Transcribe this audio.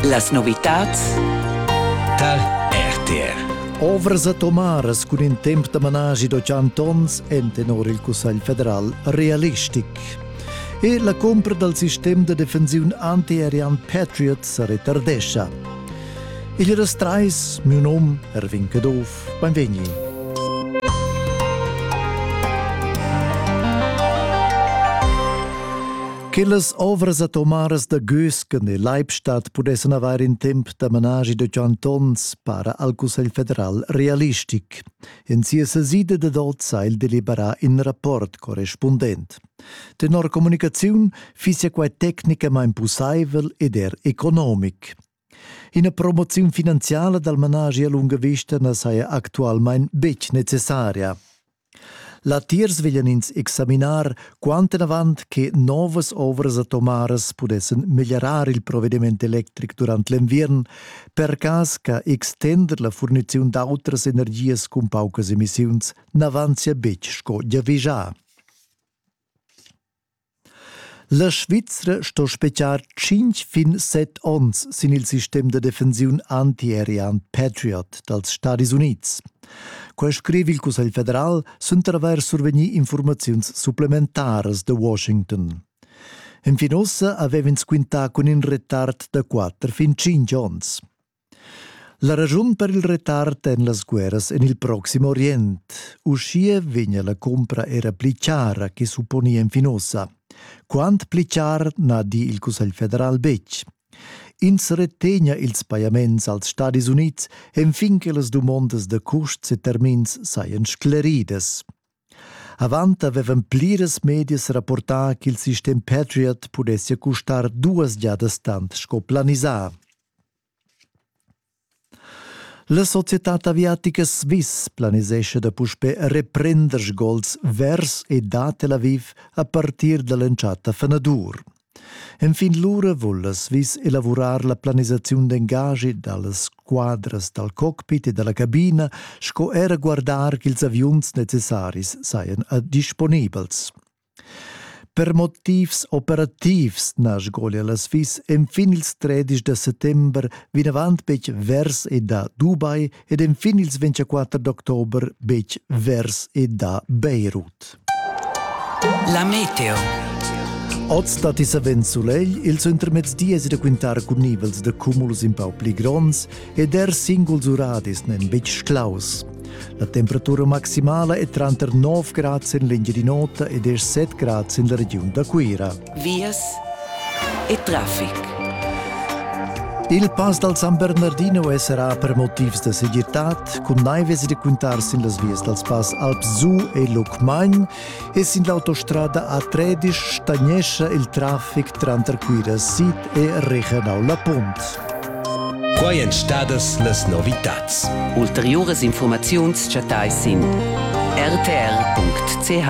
Las novitads tar RTR. Ovras atomaras cun in temp da managi da 100 onns en tenor il Cussegl federal realistic. E la compra dal sistem da defensiun antiaerian Patriot sa retardescha. Il restrais, mio nom, Erwin Caduff, benvegni. Quellas ovras atomaras da Gösken e Leibstadt pudessan avair in temp da managi da tschient onns, para al Cussegl federal realistic. En sia sesida dad oz ha el deliberà in rapport correspundent. Tenor communicaziun fissia quai tecnicamain pussaivel ed er economic. Ina promoziun finanziala dal managi a lunga vista na saja actualmain betg necessaria. Latiers veglian ins examinar quant enavant che novas ovras atomaras pudessan meglierar il provediment electric durant l'enviern, per cas che extender la furniziun d'autras energias cun paucas emissiuns n'avanzia betg sco giavischà. La Svizra sto spetgar tschinch fin set ons sin il sistem da defensiun antiaerian Patriot dals Stadis Unids. Quai scriv il Cussegl federal suenter avair survegnì informaziuns supplementaras da Washington. Enfin ussa avev'ins quintà cun in retard da quatter fin tschinch ons. La raschun per il retard en las guerras en il Proxim Orient. Uschia vegnia la cumpra era pli chara che supponia en Finosa. Quant pli char na di il Cussegl federal betg. Ins retegna ils pajaments als Stadis Unids enfin che las dumondas da custs e termins sajan scleridas. Avant avevan pliras medias rapportà ch'il sistem Patriot pudessia custar duas giadas tant sco planisà. La societad aviatica Swiss planisescha da puspè reprender sgols vers e da Tel Aviv a partir da l'entschatta fanadur. Enfin lura vullas vis elavurar la planisaziun d'engagi dallas squadras dal cockpit e dalla cabina sco era guardar ch'ils aviuns necessaris sajan disponibels. Per motivs operativs na sgolia la Sviss enfin ils 13 da settember vinavant betg vers e da Dubai ed enfin ils 24 d'october betg vers e da Beirut. La meteo. Oz dat i savens sulegl, il suentermezdi es da quintar cun nivels da cumuls in pau pli gronds ed er singuls uradis n'en betg sclaus. La temperatura maximala è tranter 9 grads en l'Engiadin'Ota ed er 7 grads en la regiun da Cuira. vias e traffic. Il pass dal San Bernardino è serrà per motivs da segirtad, cun naivas e da cuntar sin las vias dals pass Alps Su e Lucmagn e sin l'autostrada A13 stagnescha il traffic tranter Cuira Sid e Rehanau La Punt. Quai èn stadas las novitads. Ulteriuras informaziuns chattais sin rtr.ch.